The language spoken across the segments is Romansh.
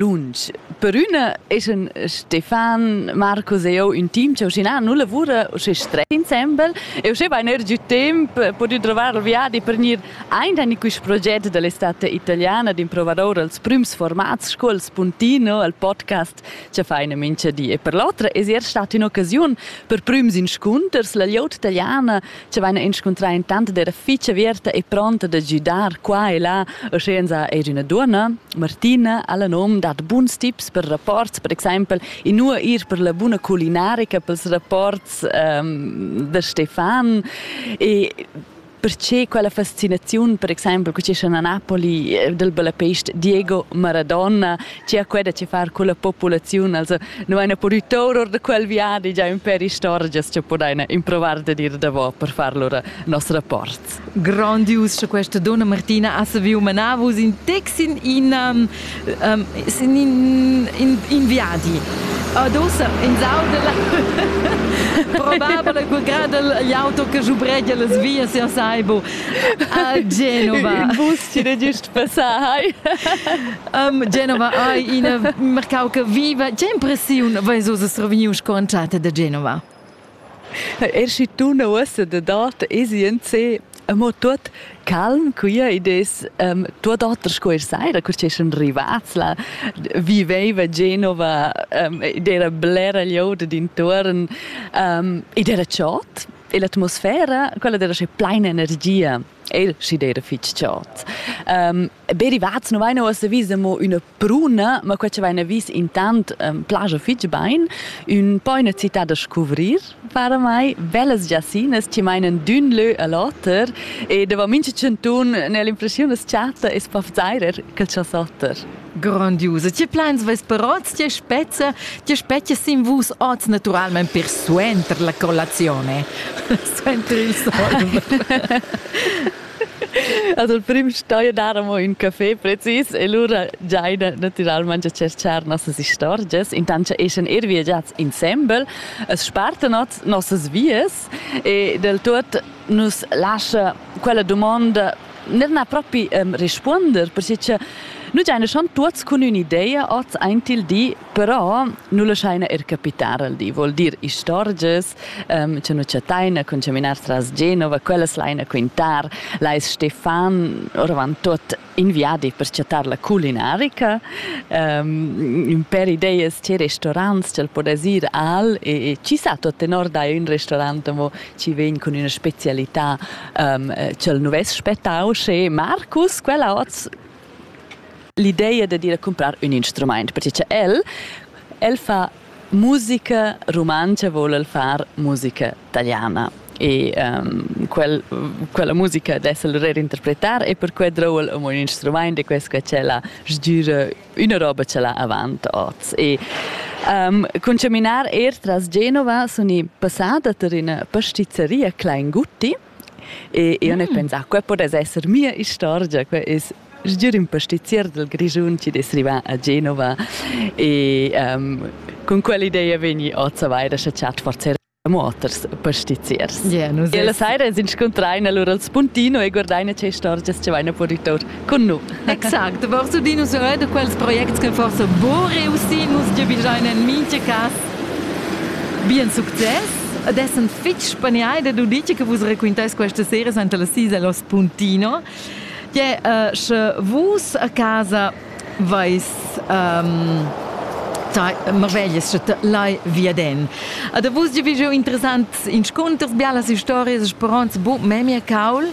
lunsch. Per üna es en Stefan, Marcus e io ün team cha uschinà nu lavura uschè stre insembel e uschè bain eir giü temp pudü trovar il viadi per gnir aint in quist proget da l'estate italiana d'improvadour als prüms formats sco il Spuntino, al podcast cha faina mincha di. E per l'otra es eir stat ün'occasiun per prüms inscunters la glieud italiana ci vaina inscuntrà intant d'era fich averta e pronta da güdar qua e là, uschenza eir üna duonna, Martina, ha la nom dat buns tips per rapports, per exaimpel inua ir per la buna culinarica pels rapports ehm, da Stefan e perché quella fascinaziun, per exaimpel, co ci a Napoli eh, del bellapest Diego Maradona Chia quei da che far culla populaziun, also nu haina pudü tour or da quel viadi già ün pêr istorgias cha pudaina improvar da dir davo per far lura nos rapport. Grandius cha questa donna Martina ha saviu manar vus in taxi in ina um, in, in, in viadi. Adossa in saudela probabile quel grad gli auto che giubregia las vias ja saibo a Genova. In bus ci da giust passai. Um, Genova ei ina mercau che viva. Che impressiun veis uss revegnius sco entschatta da Genova? Er si tuna ussa da dat esienze mo tut calm quia ed es um, tuot oter sco er saira, cur che sun rivats là, viveva Genova um, ed era blera glieud d'intuorn um, ed era chod e l'atmosfera, quella era sche plaina energia. El si era fitg chod. Um, Derivats nu vain uossa vis amo üna pruna, ma quai chi vaina vis intant ehm, plaja fich bain. Ün po üna cità da scuvrir varamai, Vellas Giassinas chi mainan d'ün lö a l'oter e davo mincha chantun n'he l'impreschiun as chatta es po vzairer quel cha's oter. Grondius. Tge plans vus per oz? Tge spezza, tge spezia sin vus oz naturalmente per suenter la colazione? suenter il sonn. Also il prim stoi dar amo ün caffè precis e lura giaina natüralmaing a tscherchar nossas istorgias. Intant cha eschan eir viagiats insembel, as spartan ot nossas vias e del tuot nu's lascha quella dumonda neir na propi um, respuonder, perche cha nu giaina schon tuots cun ün'idea ot aint il di Però nu laschaina eir capitar al di, vuol dir istorgias ehm cha nu chattaina cun chaminar tras Genova, quellas laina quintar. Lais Stefan oravant tuot in viadi per chattar la culinarica, ehm ün pêr ideas che restorants cha'l pudess ir al e e chi sa tuot tenor dai ün restorant amo chi vegn cun üna specialità ehm cha'l nu vess spettà usché. Marcus, quella hoz L'ideia dad ir a cumprar ün instrumaint, perche cha el, el fa musica rumantscha, voul el far musica taliana. E ehm quel quella musica dess el eir interpretar e perquai drouva el amo ün instrumaint e quest qua ch'el ha sgüra üna roba ch'el ha avant hoz. E ehm cun chaminar eir tras Genova sun i passà da tar üna pastizeria Kleingutti E io ne pensà, quai podess esser mia istorgia, quai es sgür ün pastizier dal Grischun chi'd es rivà a Genova e um, cun quell'idea vegni oz avair da chattar forsa moters pastiziers. Yeah, e la saira es inscuntraina lura al spuntino e guardaina che istorgias cha vaina puritour. Con nu. Exact, forse di nus da quels projects che forse bo reussì nus giavigiain en mincha cas bien success ed essend fitg spaniai da dir che vus raquintais questa sera senta la sisa Los Puntino che uh, sche vus a casa vais um, marveglias sche lai via den. A da vus giu interessant inscunters, bialas historias, speranz, bu memia caul.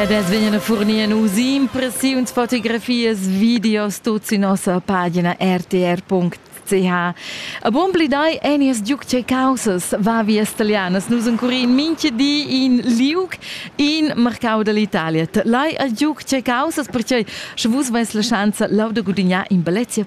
Ed es vegnan a furnir nus impressiuns, fotografias, videos, tuts in nossa pagina rtr.ch. A bon pli dai enias giuc che causas, va vias italianas, nus encurin mincha di in liuc in marcau dall'Italia. Lai a giuc che causas perché sche vus vais la schanza lau da gudignar in bellezia